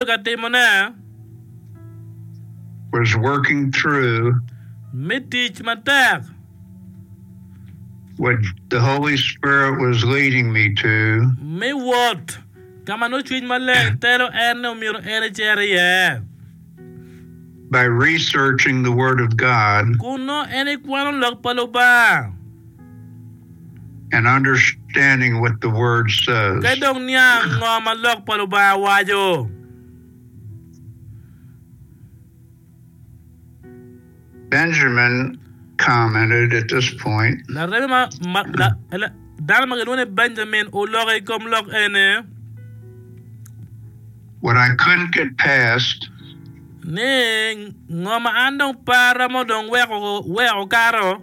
ka timone. Was working through. Me tic matek. What the Holy Spirit was leading me to. Me wot ka ma nongo Cwiny Maleng telo en ni omyero en ecer iye. By researching the Word of God. Kun nongo en ekwano Lok pa Lubanga. Ka dong niang ngo ma Lok pa Lubanga waco. Dano ma kilwongo ni Benjamin oloko i kom lok eni ni, Ngo ma an dong parra ma dong weko kato?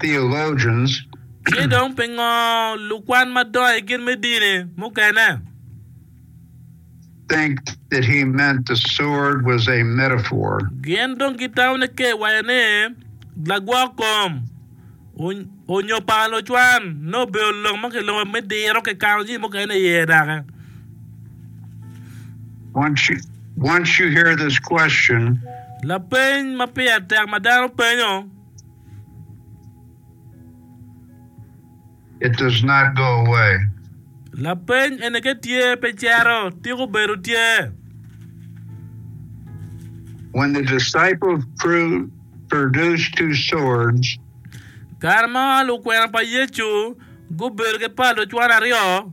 theologians. Ci dong pingo lukwan madongo i gin me dini mukene? think that he meant the sword was a metaphor. Gin dong gitamo ni ka iwaco ni lagwok kom onyo pala lucwan nongo obedo lok ma kiloko me diro kikano jami mukene iye daki. Once you, once you hear this question, Lapeny ma pire tek ma dano penyo. It does not go away. Lapeny ene ke tye pe cero, tika obedo tye? When the disciples pru produced two swords, Kare ma lukwena pa Yecu gubedo ki pal ocwan aryo,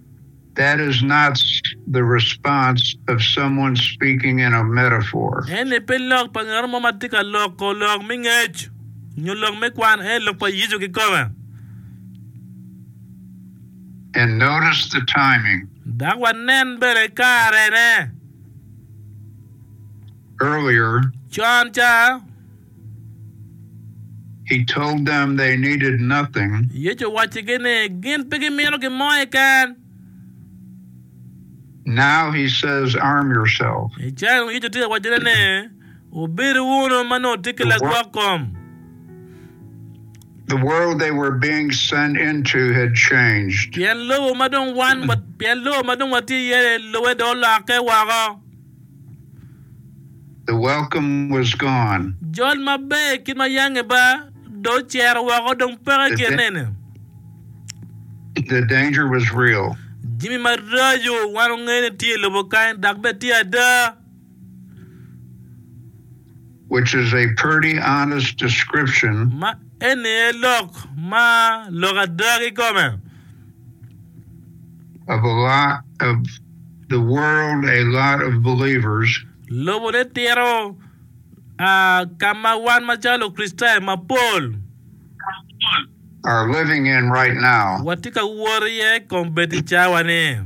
That is not the response of someone speaking in a metaphor. Eni pe lok pa ngat mo ma tye ka loko lok me ngec nyo lok me kwan, ento lok pa Yecu kikome. And notice the timing. Dok wanen bene karene. Earlier. Con ca. He told them they needed nothing. Yecu owaccigi ni gin pe gimito gin mo keken. Now he says, Arm yourself. I cayi-nu Yecu tye ka waccone ni, Wubidu wunu ma nongo wutye ki lagwok kom. The world they were being sent into had changed. Pien lobo ma dong wan, pien lobo ma dong watye iye-ni, lubbe dong olokke woko. The welcome was gone. Jol maber ki ma yange ba dong ocero woko, dong peke ki anene. The danger was real. Jami maraco wan wangeyo ni tye i lobo kany dok bene tye ada. which is a purty honest description. Ma eni aye lok ma lok ada kikome. Of a lot of the world, a lot of believers. Lobo ne tito a ka ma wan macalo Lukricitayo mapol. Are living in right now. Watye ka wot iye kombeddi cawa ni.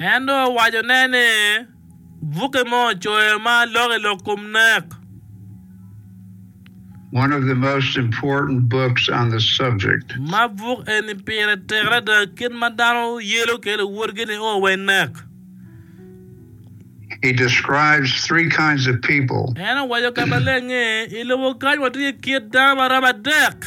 En dong owacone ni, Bukke mo ocoyo ma lok i lok kom nek. Ma buk eni pire tek adada kit ma dano yelo kwede luwotgi ni o wa i nek. En owaco ka maleng ni, I lobo kany watye ki kit dano ma romo adek.